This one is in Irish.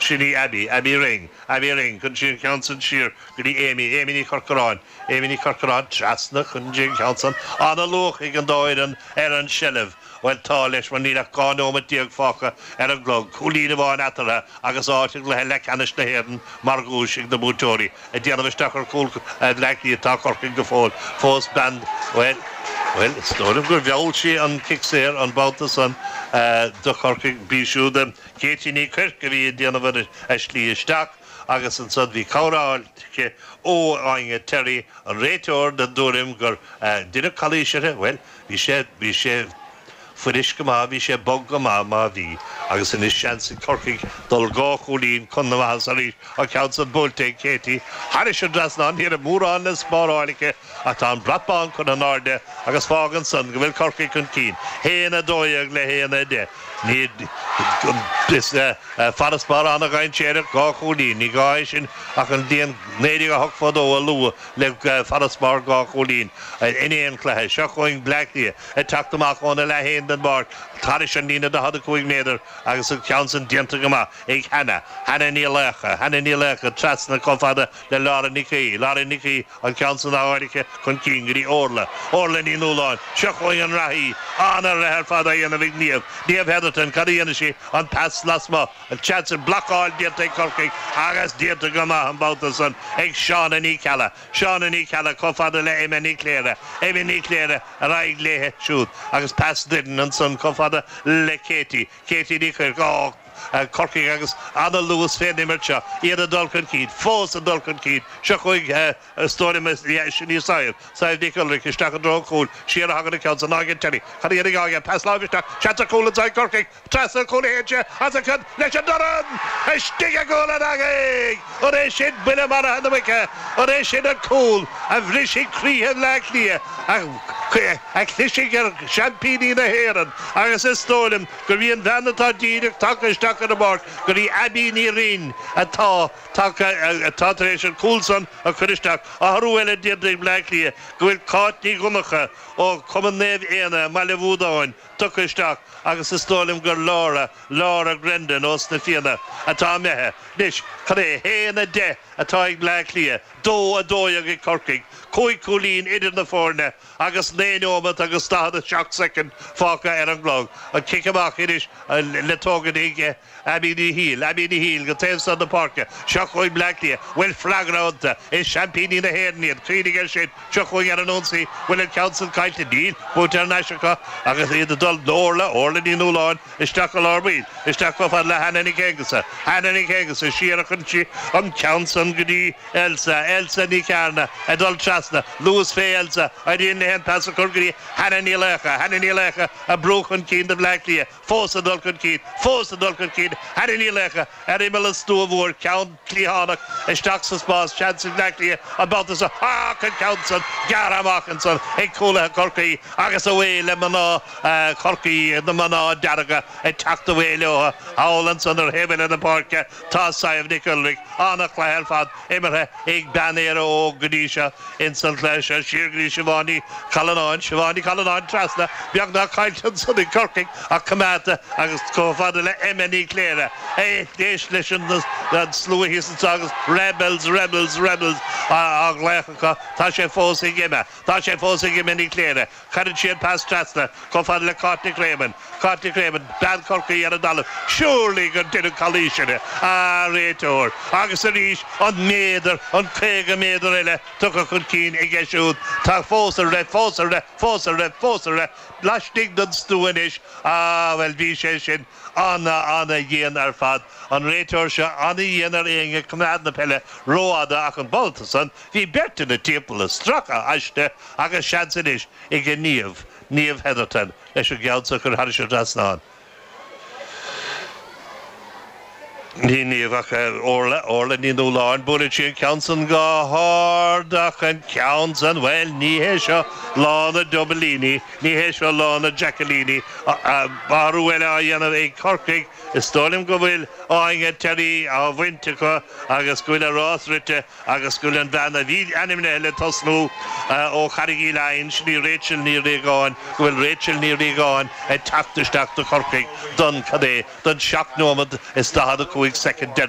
Sin í Abby, Abby Ring, Abby Ring, cuireann sí an ceann san siar go dtí Amy, Amy Ní Chorcoráin, Amy Ní Chorcoráin, trasna, cuireann sí an ceann san. Ana-luach ag an dá fhoireann ar an tseilbh. Bhuel, tá, leis, mar níl ach 12 neomat fágtha ar an gclog, cúilín amháin eatartha agus áit i gcluiche leathceannais na hÉireann mar dhuais ag na buaiteoirí. Ag déanamh isteach ar chúl Bhleácliath atá Corcaigh go fóill, fós bean, bhuel, bhuel, is dóigh liom gur mheall sí an cic saor an babhta san do Chorcaigh, b'í siúd a. Katie Ní Chuirc a bhí ag déanamh ar a slí isteach agus ansan bhí cabhair á fháil aici ó Áine Terry, an réiteoir, den dtuairim gur deineadh calaois uirthi. Bhuel, bhí sé, bhí sé fuirist go maith, bhí sé bog go maith, má bhí, agus anois seans ag Corcaigh dul dhá chúilín chun na maitheasa arís, an ceann san buailte ag Katie thairis an dtrasnán, ní raibh mórán le spáráil aici. Ach tá an brat bán curtha in airde agus fágann san go bhfuil Corcaigh chun cinn, haon a dó dhéag le haon a deich. Is farasbarr an-dhainséarach dhá chúilín, ní gá é sin ach an bhliain 1982 a lua le farasbarr dhá chúilín in aon chluiche. Seo chugainn Bleá Cliath ag teacht amach óna leath féin den bpáirc thairis an líne 45 méadar agus an ceann san déanta go maith ag Hannah, Hannah Ní Laocha, Hannah Ní Laocha trasna chomh fada le Lauren Nic, Lauren Nic Aoidh. An ceann san áirithe chun cinn go dtí Órla, Órla Ní Nualláin. Seo chugainn an reathaí. Ana-ruathar ar fad á dhéanamh ag Niamh, Niamh Hetherton. Cad a dhéanfaidh sí? An pas lasmuigh, tá seans ar, blocáil déanta ag Corcaigh agus déanta go maith an babhta san ag Shauna Ní Cheallaigh. Shauna Ní Cheallaigh chomh fada le Emma Ní Chléire. Emma Ní Chléire ar aghaidh léithe siúd agus pas doirn ansan chomh fada le Katie. Katie Ní Chuirc, Corcaigh agus ana-luas fén imirt seo, iad ag dul chun cinn, fós ag dul chun cinn. Seo chugainn is dóigh liom, sin í Sadhbh, Sadhbh Nic Ualraic, isteach i dtreo an chúil, siar a thagann an ceann san ag Áine Terry, chun a dhéanamh dhá dhéanamh, pas láimhe isteach, seans ar chúl anso ag Corcaigh, trasna an chúil a théann sé, os a cionn, leis an dorn! Istigh i gcúl na heangaí! An é sin buille maraithe na muice? An é sin an cúl a bhrisfidh croíthe Bhleá Cliath, a chlisfidh ar sheaimpíní na hÉireann? Agus is dóigh liom gurb í an bhean atá díreach tagtha isteach ar an bpáirc, gurb í Abbie Ní Rinn, atá tagtha, atá tar éis an cúl san a chur isteach, athrú eile déanta ag Bleá Cliath, go bhfuil Cáit Ní Dhonnacha ó Chumann Naomh Éanna i mBaile Bhuadáin, tugtha isteach agus is dóigh liom gur Laura, Laura Grendon ós na Fianna, atá imithe. Anois, cad é? A haon a deich atá ag Bleá Cliath, dó a dó dhéag ag Corcaigh, cúig chúilín idir na foirne agus naoi nóimeat agus daichead a seacht soicind fágtha ar an gclog. An cic amach anois le tógaint ag. Abby Ní Shíl, Abby Ní Shíl, go taobh san na páirce, seo chugainn Bleá Cliath, bhfuil freagra iontu, is seaimpíní na hÉireann iad, cuimhnigh air sin, seo chugainn ar an ionsaí, bhfuil an ceann san caillte, níl, buaite ar nais acu, agus iad ag dul, Orla, Orla Ní Nualláin, isteach go lár baill, isteach chomh fada le Hannah Nic Aonghusa, Hannah Nic Aonghusa, siar a chuireann sí an ceann san go dtí Elsa, Elsa Ní Chearna, ag dul trasna, luas fé Elsa, éiríonn léi an pas a chur go dtí Hannah Ní Laocha, Hannah Ní Laocha, ag brú chun cinn do Bhleá Cliath, fós ag dul chun cinn, fós ag dul chun cinn, Hannah Ní Laocha, ar imeall an stua mhóir, ceann cliathánach, isteach sa spás, seans ag Bleá Cliath an babhta seo ach an ceann san gearrtha amach ansan ag cúlaithe Chorcaí agus away le mná Chorcaí, na mná dearga ag teacht away leotha thall ansan ar thaobh eile na páirce. Tá Sadhbh Nic Ualraic, ana-chluiche ar fad imeartha ag bean Éire Óg go dtí seo ins an chluiche seo. Siar go dtí Siobhán Ní Challanáin. Siobhán Ní Challanáin trasna, beagnach caillte ansan ag Corcaigh ach coimeádta agus chomh fada le Emma Ní Chléire. Éist, éist leis an slua thíos anso agus Rebels, Rebels, Rebels á ghlaoch acu. Tá sé fós ag Emma. Tá sé fós ag Emma Ní Chléire. Cuireann sí an pas trasna chomh fada le Cáit Nic Réamainn. Cáit Nic Réamainn, bean Chorcaí ar an dtalamh, Surely gur deineadh calaois uirthi, a réiteoir! Agus arís, an méadar, an caoga méadar eile tugtha chun cinn aige siúd, tá fós ag rith, fós ag rith, fós ag rith, fós ag rith, laistigh den stua anois. Ah, bhuel, bhí sé sin ana-ana-dhian ar fad, an réiteoir seo, ana-dhian ar éinne, coimeád na peile rófhada ach an babhta san, Bhí beirt ina timpeall ag stracadh aisti agus seans anois ag Niamh, Niamh Hetherton, leis an gceann seo a chur thairis an trasnán. Ní Niamh ach Orla, Orla Ní Nualláin. Buaileann sí an ceann san go hard ach an ceann san, bhuel, ní hé seo lá na Dublíní, ní hé seo lá na Jackilíní. Athrú eile á dhéanamh ag Corcaigh. Is dóigh liom go bhfuil Áine Terry á bhaint acu agus go bhfuil a rás rite. agus go bhfuil an bhean a bhí ainmnithe le tosnú ó Charraig Uí Leighin, sin í Rachel Ní Riagáin, go bhfuil Rachel Ní Riagáin ag teacht isteach do Chorcaigh don, cad é, don seacht nóiméad is daichead a cúig soicind deireanach.